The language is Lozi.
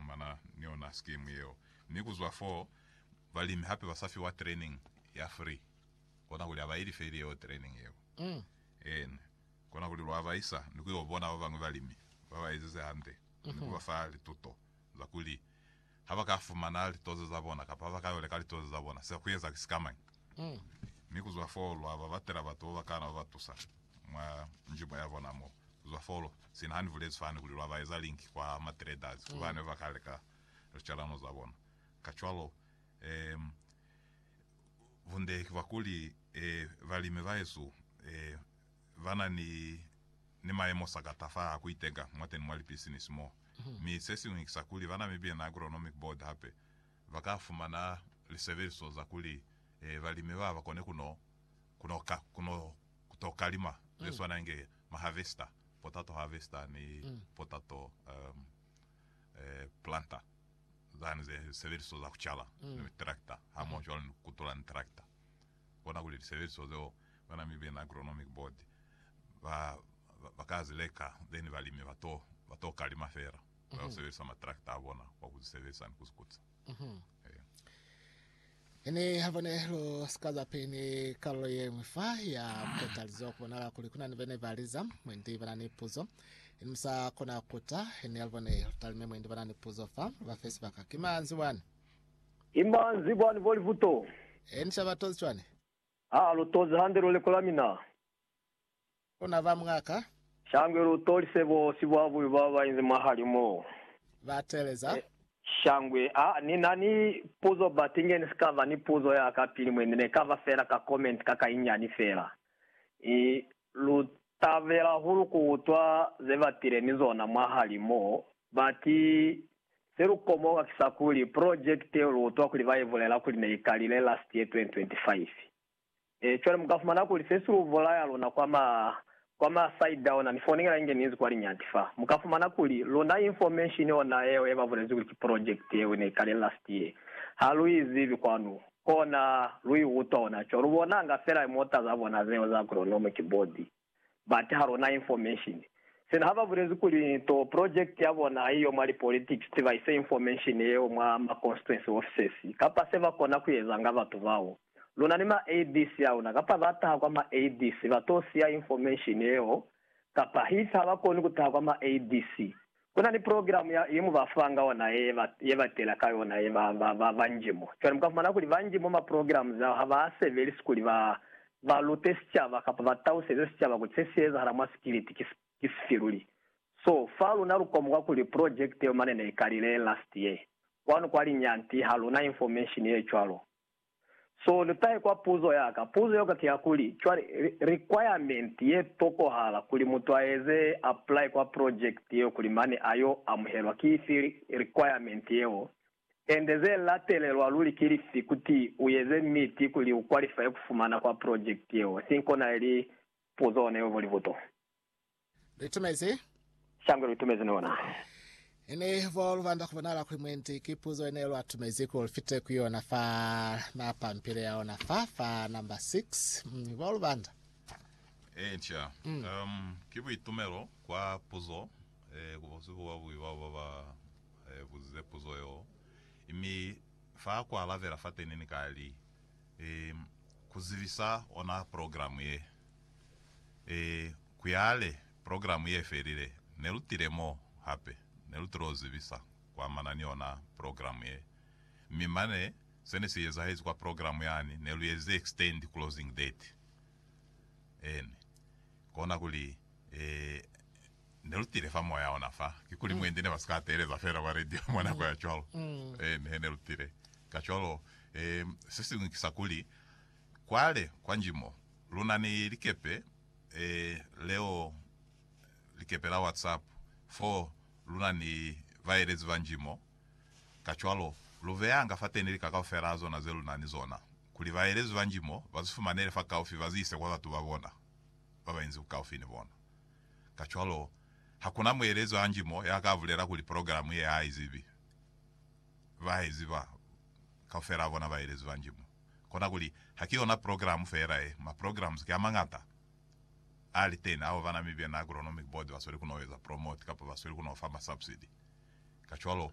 fumana ni yona sikimu yeo mi ku zwa foo balimi hape ba sa fiwa training ya free. Kona kuli ha ba i life ili yeo training yeo. Eena. Kona kuli lwa ba isa ni ku yo bona ba bañwi balimi ba ba ezize hande ni ku ba fa lituto za kuli ha ba ka fumana litoze za bona kapa ha ba ka yo leka litoze za bona, se ba ku eza ki sikamañi. Mi kuzwa foo lwa ba batela batu babakaana ba ba tusa mwa njibo ya bona mo. Kuzwa foo, sina ha ni bulezi fani kuli lwa ba eza linki kwa ma traders ku bane ba ka leka licalano za bona. Kacwalo, bunde ki bwa kuli, balimi bahesu ba na ni ni mayemo sa kata fa a ku iteka mwateni mwa lipisinisi mo. Mi sesiñwi ki sa kuli ba na mibina, agronomic board, hape. ba ka fumana lisebeliso za kuli balimi ba ba kone ku no ku no ka ku no ku to ka lima ze swana inge ma harvester, potato harvester ni potato um, eh, planter zani ze sebeliso za ku cala ni tractor hamoho cwalo ni ku kutula ni tractor. Kona kuli lisebeliso zeo ba Namibian Agronomic Board ba ba ka zi leka then balimi ba to ba to ka lima fela. ba yo sebelisa matrakta a bona kwa ku sebelisa ni ku zukutsa. Ene ha bone lo sika za peni kalulo ye ñwi fa ya kotalizo ku bonala kuli kuna ni bene ba liza mwendi bana ni puzo ini musa kona kuta ene ya bone lutalime mwendi bana ni puzo fa ba fe sibaka ki manzi wani ima nzi bwani bo livuto eni shaba tozi cwani ha lo tozi hande lo leko la mina Bona ba mwa ka. Shangwe lu tolise bosi bwa bubi ba ba inzi mwahali mo. Ba teeleza. Shangwe, a ni na ni puzo but inge ni si ka ba ni puzo ya ka pili mwe, ni ne ka ba fela ka comment ka ka inyani fela. I lu tabela hahulu ku utwa ze ba tile ni zona mwahali mo, but se lu komoka ki sa kuli project yeo lu utwa kuli ba i bulela kuli ne i kalile last year 2025. Cwale mu ka fumana kuli se si lu bulaya luna kwa ma, kwa ma side ona, ni fonela inge ninzi kwa liñati fa. Mu ka fumana kuli luna information ona yeo ye ba bulezi kuli ki project yeo ne ikale last year, ha lu i zibi kwanu. Kona lu i utwa hona cwalo, lu bonanga fela mota za bona zeo za agronomic board. Ba taha lona information. Sina haba bulezi kuli to project ya bona haiyo mwa li politics ti ba ise information yeo mwa ma constituency offices kapa se ba kona ku eza nga batu bao. Luna ni ma ADC auna kapa ba taha kwa ma ADC ba to siya information yeo kapa hif haba koni ku taha kwa ma ADC Ku na ni progilamu ya, ye mu ba fanga yona ye ba, ye ba tela ka yona ye ba, ba, ba, banji mo. Cwale mu ka fumana kuli banji mwa maprogilamu zao ha ba sebelisi kuli ba, ba lute sicaba kapa ba tauseze sicaba kuli se si ezahala mwa sikiliti ki, ki sifi luli. So, fa luna lu komoka kuli project yeo mane ne i kalile last year. Kwanu kwa linyanti ha lu na information ye cwalo. So lu tahe kwa puzo ya ka. Puzo ya ka ki ya kuli, cwale, requirement ye tokohala kuli mutu a eze apply kwa project yeo kuli mane a yo amuhelwa ki ifi requirement yeo, ende ze latelelwa luli ki lifi kuti u eze miti kuli u qualifye ku fumana kwa project yeo? Think ona ili puzo ona yo volibuto. Luitumezi? Shangwe luitumezi ni ona. Ini bo lubanda ku bonala kuli mwendi ki puzo ine lwa tumezi kuli lufite ku yona fa na pampile ya ona fa, fa number 6. Mm, bo lubanda. Eh, nca. Mm. Um, ki buitumelo kwa puzo, eh, ku bosi bo babubi bao ba ba eh, buzize puzo yo. Mi fa ku alabela fateni ni ka li, eh, ku zibisa ona programu ye. E, kuyale, program ye felile. Ne lu tile mo, hape, ne lu tilo zibisa kuamana ni yona program ye. Mi mane, se ne si ezahezi kwa program yani, ne lu ezize extend closing date. Eeni. Kona kuli, e, ne lu tile fa moya ona fa. Kikuli mwendi ne ba si ka teeleza fela kwa radio mwa nako ya cwalo. Eeni, he ne lu tile. Kacwalo, e, se siñwi ki sa kuli, kwale, kwa nji mo, Luna ni likepe leo, likepe la WhatsApp, fo luna ni baelezi banji mo. Kacwalo, lu beyanga fateni lika kaufela zona ze luna ni zona, kuli baelezi banji mo ba zi fumanele fakaufi ba zi ise kwa batu ba bona ba ba inzi bukaufi ni bona. Kacwalo, hakuna muelezi hanji mo ya ka bulela kuli programe ye ha i zibi. bahezi ba kaufela a bona baelezi ba Njimo. Kona kuli, ha ki ona progilamu feela ye. Maprogilamu ki a mañata a li teni ao bana Mibian Agronomic Board ba sweli ku no eza promote kapa ba sweli ku no fa masubsidi. Kacwalo,